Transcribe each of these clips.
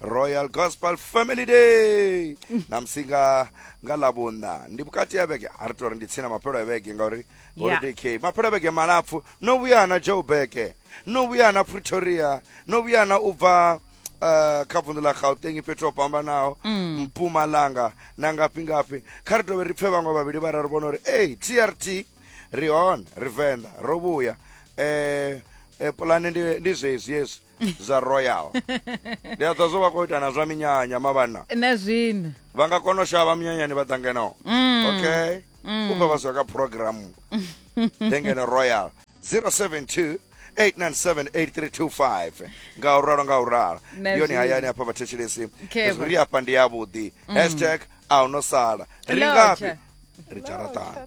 royal gospel family day na musi nga nga lavhunna ndi vhukati ha vhege a ri tori ndi tsini na maphelo a vhege ngauri Yeah. uri dk maphelo a vhege malapfu no vhuya na joburg no vhuya na pretoria no vhuya na u bva Uh, kha vundu ḽa gauteng fhethu ho fhambanaho mpumalanga na ngafhi ngafhi kha ri dovhe ri pfhe vhaṅwe vhavhili vhararu vhona uri ei trt ri hone ri venḓa ro vhuya eh, eh, pulane ndi, ndi zwezwi hezwi zwa royal ndi a ḓa zwo vha khou ita na zwa minyanya mavhanna na zwino vha nga kona u shavha minyanyani vha ḓa ngeno mm. okay mm. ubva vha zwa ka programu ndengeno royal 072 8978325 nga u ralo nga u ralo yoni hayani hafha vhathetshelesi ri hafha ndi yavhuḓi mm. hashtag a u no sala ri ngafhi ri dzharatana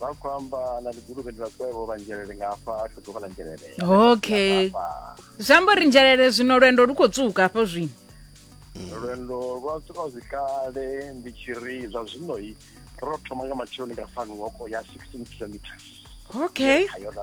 vha khou amba na liguluvhe ndi vhakwevho vha nzhelele nga afha a tshi ḓuvha ḽa nzhelele okay zwi amba uri nzhelele zwino lwendo lu khou tswuka hafho zwino lwendo lwa tswuka zwikale ndi tshi ri zwa zwino-i ro thoma nga matsheloni nga fani woko ya 16 kilometers okay Kha yona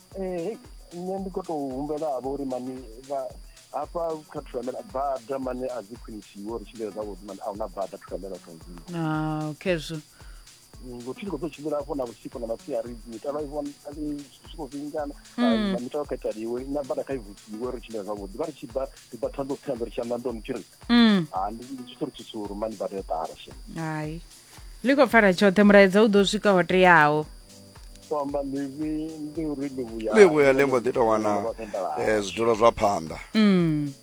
ee nṋe ndi khou tou humbela havha uri mani hafha kha thulamela bada mane a dzi khwinisiwe uri tshimbile zwavhuḓi mane a huna bada thulamela tonzini ah, okay zwo ngo tshi khou ḓo tshimbila hafho na vhusiku na masiari mitalo i vhona zwi khou vingana hmm. ah, na mitalo kha italiwe na bada kha i vusiwe uri tshimbile zwavhuḓi vha ri tshi bva ri bva ṱhanḓo ṱhanḓo ri tshi amba ndoni tshi ri hmm. ha ah, ndi tshi tori tshisuru mani bada yo ṱala she hai ḽi khou pfala tshoṱhe mulaedza u ḓo swika ho teaho u amba ḽivi ndi uri ḽivhuya ḽivhuya ḽi mbo ḓi tou wana eh, zwidulo zwa phanḓa mm.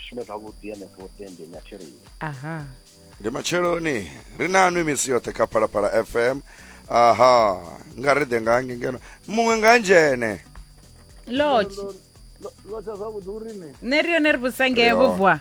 shume zwavhuḓi henefho tendeni a theleni aha ndi matsheloni ri na nwi misi yoṱhe kha phalaphala fm aha nga ri ḓe nga nge ngeno muṅwe nga ndzhene lotshi lotshi zwavhuḓi uri ne ne ri yone ri vhusange vhubwa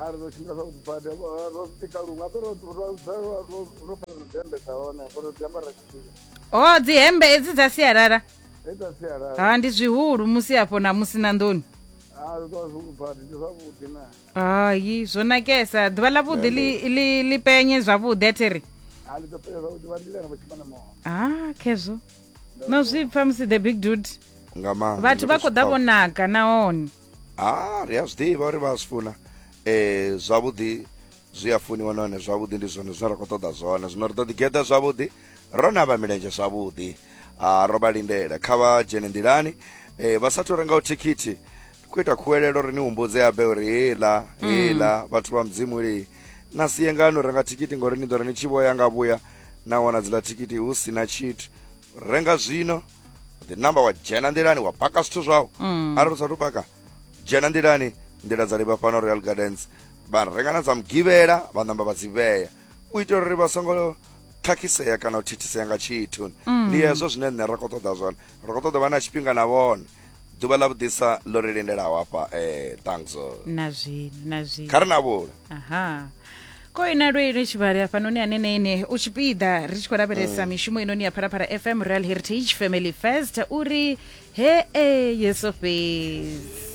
a ri ḓo tshimbila zwavhuḓi badi ro tika luṅwe ape ro fara dzihembe dza hone apo ro dzi ambara tshifhinga o oh, dzihembe edzi dza sialala dza sialala ha ndi zwihulu musi afho na musi na nḓuni hayi zwo nakesa ḓuvha ḽa vhuḓi ḽi penye zwavhuḓi athiri ah khezwo no zwi pfa musi the big dude vhathu vha khou ḓa vho naka nahone ha ri a zwi ḓivha uri vha a zwi funa um zwavhuḓi zwi a funiwa nahone zwavhuḓi ndi zwone zwine ra khou ṱoḓa zwone zwino ri ḓo ḓi geḓa zwavhuḓi ro navha milenzhe zwavhuḓi a ro vha lindela kha vha dzhene nḓilani um vha sathu rengaho thikhithi ri khou ita khuwelelo ri ni humbudze abe uri heiḽa mm. heiḽa vhathu vha mudzimu li na sie ngani u renga thikhithi ngori ni ḓo ri ni tshi vhoya nga vhuya na wana dzila thikhithi hu si na tshithu renga zwino the number wa dzhena nḓilani wa paka zwithu zwau mm. arali u sathu paka dzhena nḓilani nḓila dza livha fhano real gardens vha renga na dza mugivhela vha namba vha dzi vhea u itela uri vha songo khakhisea kana u thithisea nga tshithu mm. ndi hezwo zwine nṋe ra khou ṱoḓa zwone ri khou ṱoḓa vha na tshifhinga na vhone ḓuvha ḽa vhuḓisa ḽo ri lindelaho hafha eh thanxo na zwino na zwino kha ri na vhula aha ko ina lwele tshivhale hafhanoni hanenene u tshipiḓa ri tshi khou lavhelesa mishumo inoni ya phalaphala fm real heritage family first uri he e yeso fhedzi